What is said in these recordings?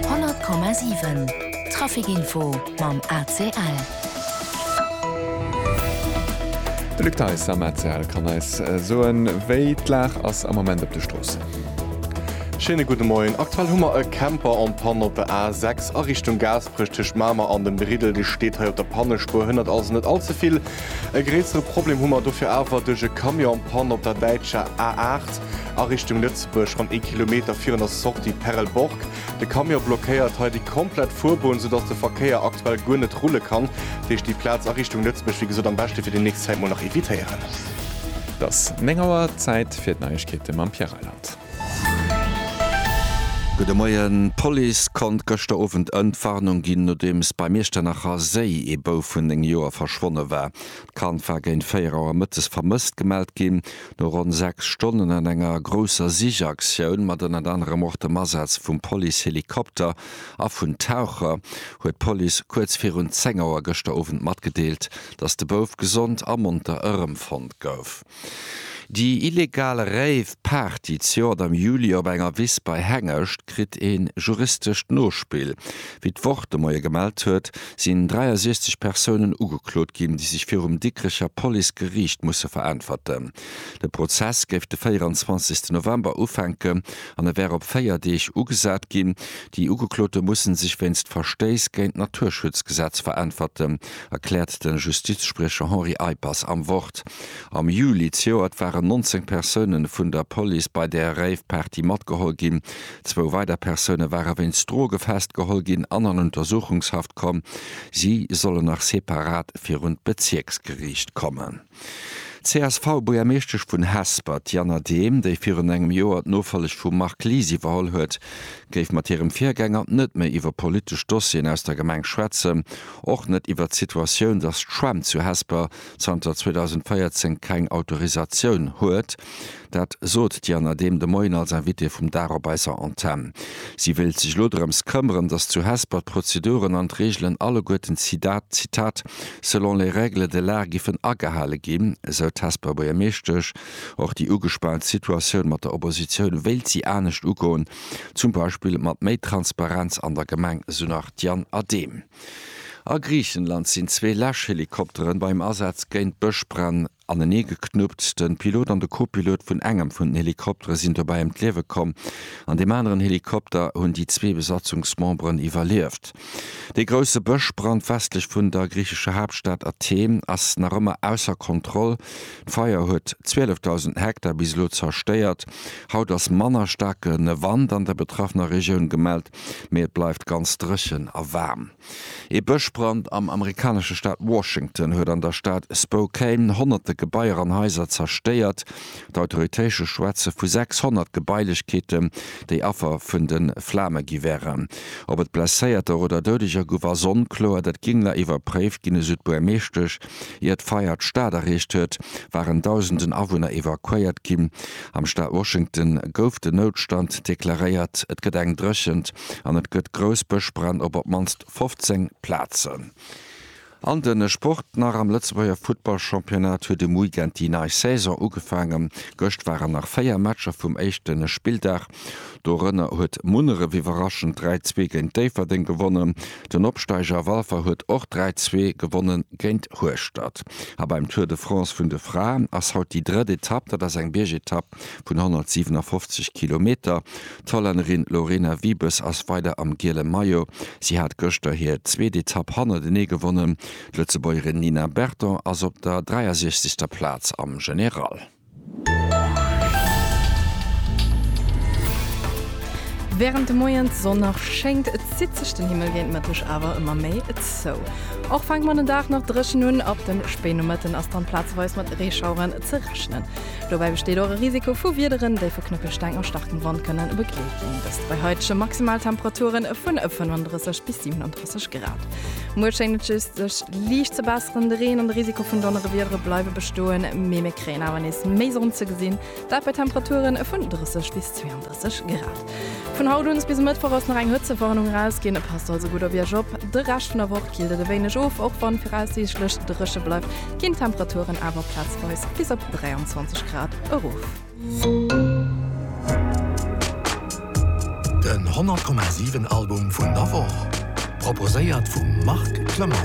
100,7 Trafic-Info mam ACL. De Luc Theis am ACL kann eis soen, wéi d'Lag ass am Moment op de Stroossen. Schéine gudde Moien. Aktuell hu mer e Camper en panne op der A6 a Richtung Gaasperech. Tëscht Mamer an dem Briddel, dee steet hei op der Pannespuer, hënnert also net all ze vill. E gréissere Problem hu mer dofir awer duerch e Camion en panne op der däitscher A8. a Richtung Lëtzebuerg ronn ee Kilometer virun der Sortie Perelborg. De Camion blockéiert hei déi komplett Fuerbunn, soudass de Verkéier aktuell guer net rulle kann. Dat heescht, déi Plaz a Richtung Lëtzebuerg, wéi gesot, am beschte fir déi nächst Zäit mol nach evitéieren. Et ass 9 Auer, Zäit fir d'Neiegkeete mam Pierre Reyland. Gudde Moien. D'Police konnt gëschter Owend Entwarnung ginn, nodeems beim Iechternacher Séi ee Bouf vun 9 Joer verschwonne war. D'Kand war géint 4 Auer mëttes vermësst gemellt ginn. No ronn sechs Stonnen an enger grousser Sichaktioun, mat ënnert anerem och dem Asaz vum Police-Helikopter a vun Taucher, huet d'Police kuerz virun 10 Auer gëschter Owend matgedeelt, datt de Bouf gesond a monter erëmfonnt gouf. Déi illegal Rave-Party zejoert am Juli op enger Wiss bei Hengescht kritt ee juristescht Nospill. Wéi d'Wort de Moie gemellt huet, sinn 63 Persounen ugeklot ginn, déi sech virum Dikrecher Police Geriicht musse veräntwerten. De Prozess géif de 24 November ufänken an e wär op véier Deeg ugesat ginn. Déi Ugeklote musse sech wéinst Verstéiss géint d'Naturschutzgesetz veräntwerten, erkläert de Justizspriecher Henri Eippers am Wort. Am Juli zejoert waren 19 Persoune vun der Police bei där Rave-Party matgeholl ginn, Zwou weider Persoune ware wéinst Droge festgeholl ginn an an Untersuchungshaft komm. Si sollen nach separat virun d'Bezierksgeriicht kommen. D'CSV-Buergermeeschtesch vun Hesper, d'Jana Dehm, déi virun engem Joer d'Nofolleg vum Marc Lies iwwerholl huet, géif mat hirem Virgänger net méi iwwer politesch Dossieren aus der Gemeng schwätzen, och net iwwer d'Situatioun, datt d'Schwämm zu Hesper zanter 2014 keng Autorisatioun huet. Dat sot d'Jana Dehm de Moien als Invitée vum Dag op eiser Antenn. Si wéilt sech elo drëms këmmeren, datt zu Hesper d'Prozeduren an d'Reegelen alleguerten, Zitat, selon les règles de l'art giffen agehale ginn, esou d'Hesper Buergermeeschtesch. Och déi ugespaant Situatioun mat der Oppositioun wéilt si anescht ugoen, zum Beispill mat méi Transparenz an der Gemeng, esou nach d'Jana Dehm. A Griichenland sinn zwee Läschhelikopteren beim Asaz géint Bëschbränn anenee geknuppt. Den Pilot an de Co-Pilot vun engem vun den Helikopteren sinn dobäi ëm d'Liewe komm. An deem aneren Helikopter hunn déi zwee Besatzungsmemberen iwwerlieft. Dee grousse Bëschbrand westlech vun der griichescher Haaptstad Athen ass nach ëmmer ausser Kontroll. D'Feier huet 12.000 Hektar bis elo zerstéiert. Haut ass manner staarke Wand an der betraffener Regioun gemellt. mee et bleift ganz dréchen a waarm. Ee Bëschbrand am amerikanesche Staat Washington huet an der Stad Spokane honnerte Gebaier an Haiser zerstéiert. D'Autoritéische schwätze vu 600 Gebailechkeeten, déi Affer vun de Flame gi wären. Ob et Blesséierter oder Doudeger gouf, ass onkloer. Dat géing nach iwwerpréift ginn, esou d'Buergermeeschtesch Ier d'Feier d'Stad erreecht huet, waren Dausenden Awunner evakuéiert ginn. Am Staat Washington gouf den Noutstand deklaréiert. Et gëtt eng Dréchent an et gëtt grouss Bëschbränn op op d'mannst 15 Plazen. An de Sport nach, Am Lëtzebuerger Futtballchampionnat huet um Weekend déi nei Saison ugefaangen. Gëscht waren nach 4 Matcher vum éischte Spilldag. Dorënner huet Munneref iwwerraschend 3, 2 géint Déifferdeng gewonnen. Den Opsteiger Walfer huet och 3, 2 gewonne géint Hueschtert. A beim Tour de France vun de Fraen ass haut déi drëtt Etapp. Dat ass eng Biergetapp vun 157 Kilometer. D'Hollännerin Lorena Wiebes ass weider am giele Maillot. Si hat gëschter hir zweet Etapp hannertenee gewonnen. D'Lëtzebuergerin Nina Berton ass op der 63. Plaz am General. Wärend de Moien d'Sonn nach schéngt, zitt sech den Himmel géint Mëtteg awer ëmmer méi zou. Och fänkt man den Dag nach dréchen un, ab dem Spéinomëtten ass dann plazeweis mat Reeschaueren ze rechnen. Dobäi besteet och e Risiko vu Wiederen, déi vu Knëppelsteng a starkem Wand kënne begleet ginn, dëst bei heidege Maximaltemperaturen vu 35 bis 37 Grad. Sech grad. Muer schéngt et just sech liicht ze besseren. De Reen an de Risiko vun Donnerewiedere bleiwe bestoen, mee mir kréien awer nees méi Sonn ze gesinn, dat bei Temperature vun 30 bis 32 Grad. Vun haut un bis e Mëttwoch ass nach eng Hëtzewarnung erausginn, passt also gutt op Iech op. De Rescht vun der Woch killt et e wéineg of, och wann viraussiichtlech dréche bleift, ginn d'Temperaturen awer plazweis bis op 23 Grad erof. Den 100,7 Album vun der Woch, proposéiert vum Marc Clement.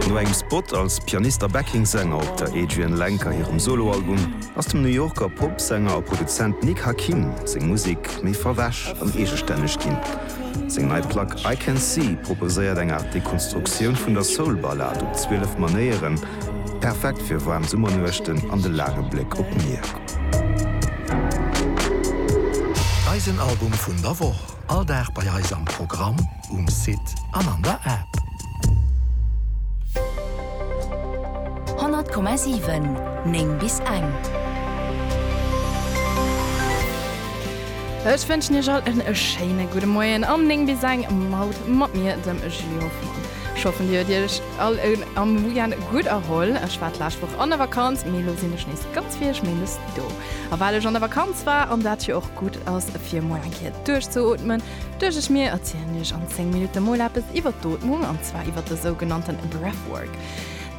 No engem Spot als Pianist a Backing-Sänger op der Adrianne Lenker hirem Solo-Album ass dem New Yorker Pop-Sänger a Produzent Nick Hakim seng Musek méi verwäsch an eegestänneg ginn. Seng nei Plack I Can See proposéiert eng Aart Dekonstruktioun vun der Soul-Ballad op 12 Manéieren, perfekt fir waarm Summernuechten an de laange Bléck op d'Mier. Eisen Album vun der Woch, all Dag bei eis am Programm, um Site an an der App. 100,7, 9 bis eng. Ech wënschen iech all en schéine gudde Moien an 9 bis eng Maud mat mir, dem Julie Hoffmann. Ech hoffen dir huet iech all am Weekend gutt erholl. Ech war d'lescht Woch an der Vakanz, mee elo sinn ech nees ganz fir iech méindes do. A well ech an der Vakanz war an dat jo och gutt ass fir emol eng Kéier duerchzeootmen, duecht ech mir erzielen iech an 10 Minutte mol eppes iwwert d'Ootmung an zwar iwwert de sougenannten Breathwork.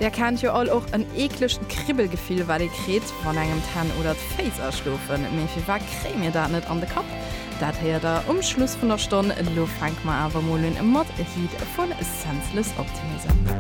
Där kennt jo all och en eeklecht Kribbelgefill wat ee kritt. Wann engem d'Hänn oder d'Féiss aschlofen, mee firwat kréie mir dat net an de Kapp? Dat héiert der um Schluss vun der Stonn. Lo fänke mer awer mol un mat Heat vu Senseless Optimism.